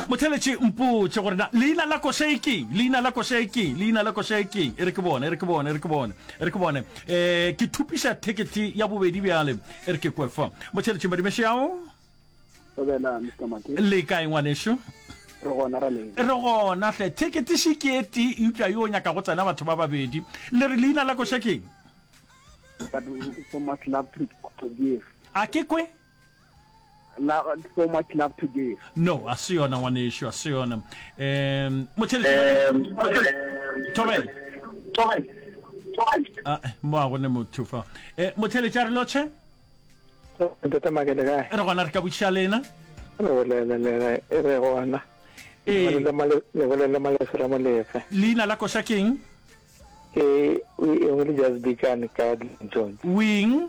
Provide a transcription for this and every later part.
Motheeletši, Mpotše gore na leina la košae ke'ng? Leina la košae ke'ng? Leina la košae ke'ng? E re ke bone, e re ke bone, e re ke bone, e re ke bone. E, ke thupiša thekethe ya bobedi bjale, e re ke kwe fa. Motheeletši, Madimešeawo? Dumela, Mister Maki. Le kae, ngwanešu? Re gona, ra leng? Re gona hle. Thekethe še ke e tee, eupša yo o nyaka go tsena batho ba babedi. Le re leina la koša ke'ng? But we so much love to produce. A ke kwe? so much love to give no a se yona ngwanešu a se yona um motheletšatobel mo a gone motho fa eh, motheletša re lotšhe re gona re ka botšiša lena e re gona ee. leina la koša keng ke e nngwe le just dikane ka jones wing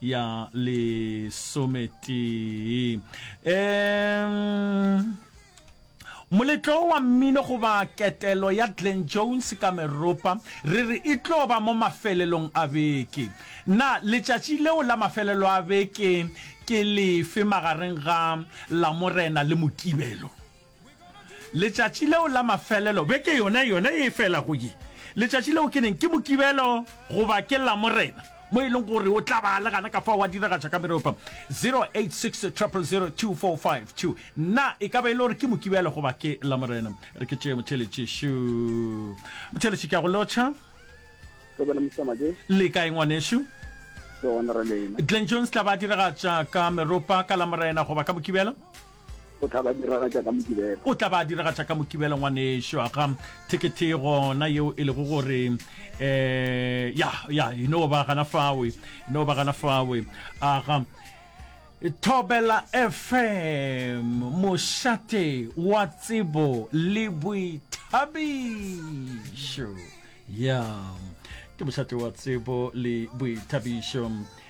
ya lesometee um moletlo wa mmino goba ketelo ya glen jones ka meropa re re e tlo ba mo mafelelong a beke na letšatši leo la mafelelo a beke ke lefe magareng ga lamorena le mokibelo Letšatši leo la mafelelo, beke yona yona ye e felago ye, letšatši leo ke neng? Ke Mokibelo goba ke Lamorena, mo e leng gore o tla ba a le gana ka fao a diragatša ka mereo pam. 0860002452 Na e ka ba e le gore ke Mokibelo goba ke Lamorena? Re ke tšee motheeletši. Šo, motheeletši, ke a go lotšha. Re bona Mr. Majesh. Le kae ngwanešu? Re gona re lena. Glenn Jones tla ba a diragatša ka meropa ka Lamorena goba ka Mokibelo? O tla ba diragatša ka Mokibelo. O tla ba diragatša ka Mokibelo, ngwanešu. Aga, thekethe e gona yeo e lego gore, eh, ya, ya, e no ba gana fawe, e no ba gana fawe. Aga, Thobela FM, mošate wa tsebo le boithabišo. Ya, ke mošate wa tsebo le boithabišo.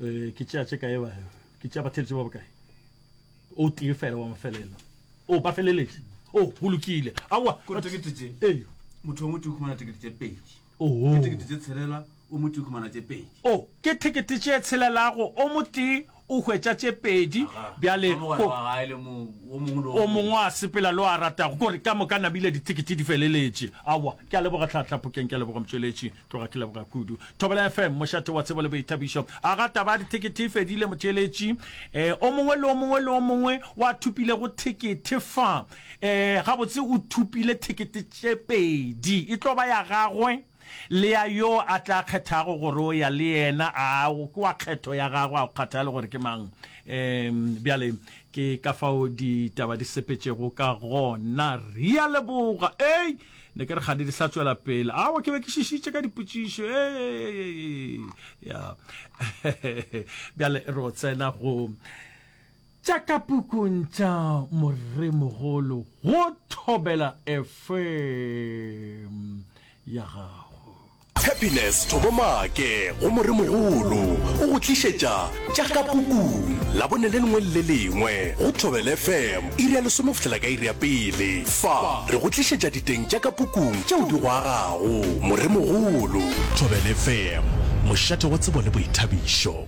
Eh, ke tšea tše kae ba ke tšea batheletše ba bokae o tee fela wa mafelelo o oh, ba feleletše o oh, go lokile awa kore tekete tše ee motho wa motho o khumana tekete tše pedi oho ke tekete tše tshelela o motho o khumana tše pedi o oh, ke tekete tše tshelelago o motee o hwetša tše pedi bjale o mongwe a sepela le o a ratago kore ka moka namile ditekete di feleletše awa ke a leboga tlhatlhapokeng ke a leboga motšweletši Tloga ke leboga kudu. Thobela FM, mošate wa tsebo le boithabišo. A ga taba ya dithekethe e fedile, motšeletši? E, o mongwe le o mongwe le o mongwe wa thupilego thekethe fa, e, gabotse o thupile thekethe tše pedi. E tlo ba ya gagwe le ya yo a tla kgethago gore o ya le yena. A o ke wa kgetho ya gagwe, a go kgathale gore ke mang. E, bjale ke ka fao ditaba di sepetšego ka gona. Rea leboga. Ei! ne ke re ga di sa tswela pele awa ke be ke šišitše ka dipotšišo ya bjale re o tsena go tša ka pukung tša moremogolo go thobela fm ya gago Tshepiness Thobomake go Moremogolo o go tlišetša Tša ka Pukung Labone le lengwe le le lengwe go Thobela FM iri ya lesome go fihlela ka iri ya pele. Fa re go tlišetša diteng tša ka pukung tšeo di go agago. Moremogolo. Thobela FM, mošate wa tsebo le boithabišo.